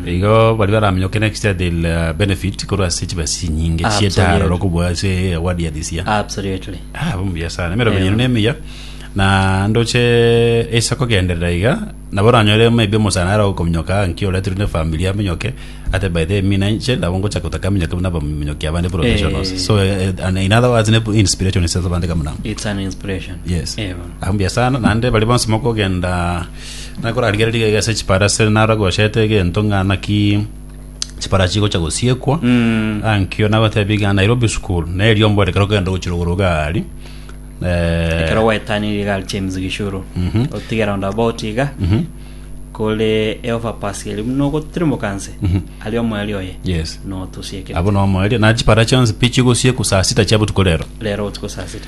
igo baria baraminyoke next year they'll uh, benefit korwa ase chibesa chinyinge Absolutely. chietaro okobua ase award ya this year absolutely Ah, bumuya sana emerogo Ewa. yino nemiya na ndoche esa kogenderera iga nabo oranyore maybe omosana ara okominyoka nki oretirwe ne family aminyoke ate by the mina inche nabo ngocha kotaka aminyoke buna abaminyoki abande professionals Eh. so eh, and in other words ne inspiration ase abande kamuna it's an inspiration yes Ewa. ahumbuya sana naende bari bonsi mokogenda Na korarigereria rigaiga ase chipara ase naro agochete egento ng'a naki chipara chigocha gosiekwa Mm. ankio nagotebia ng'a Nairobi school na eriombo ere kero kogenda gochira igoro gari Eh, ekero gwaetanirie gari james gishuru Mhm. otiga round about iga mhm, kore eoverpass eri buna ogotirimoka nse Mhm. ari omoeri oye yes notusiekere abo nomoeria na chipara chionsi pi chigosiekwa saa sita chia botuko rero rero otuko saa sita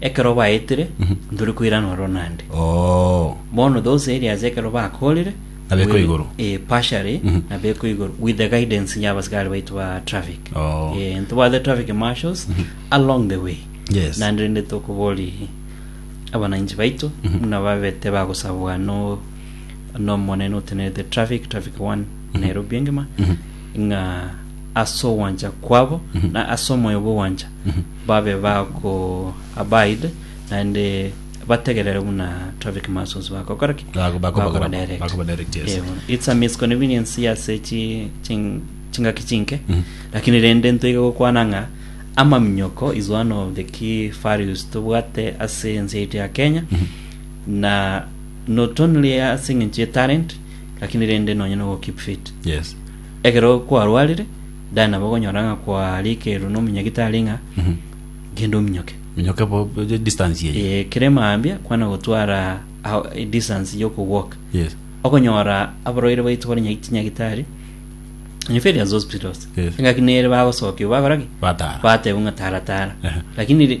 Ekero baetire, ntore koiranwa oro naende. Oo. Bono those areas ekero bakorire. Nabekwa we- igoro. Eh, partially, Mhm. nabekwa igoro with the guidance ya abasikari baitu ba traffic. Oo. Eh, ntobwate traffic marshals along the way. Yes. Naende rende tokobori abananchi baitu Mhm. muna babete bagosabwa no nomonene otenerete traffic traffic one Mhm. Nairobi engima Mhm. ng'a ase ogwancha kwabo Mhm. na ase omoyo bw'ogwancha Mhm. babe ba ko abide, naende bategerere buna traffic muscles bagokora ki? Bago- bakoba- Bakoba direct. bakoba direct, yes. Eeh, bono. It's a misconvenience ase chi- ching- chingaki chinke Mhm. lakini rende ntoige gokwana ng'a amaminyoko is one of the key values tobwate ase ense yaito ya kenya na not only ase eng'encho ye talent lakini rende nonye no go keep fit yes ekero kwarwarire Ndari nabo okonyora ng'a kwarekerwe nomonyagitari ng'a genda ominyoke. Minyoke bo bo- distance eye. Eh, ekero emambia kwana gotwara ao- e distance yokogwoka Yes. okonyora abarwaire baito bare nya- chinyagitari inferiors hospitals Yes. engaki nere bagosokia bagora ki Batara. bateba ng'a tara tara Ehe. lakini ri-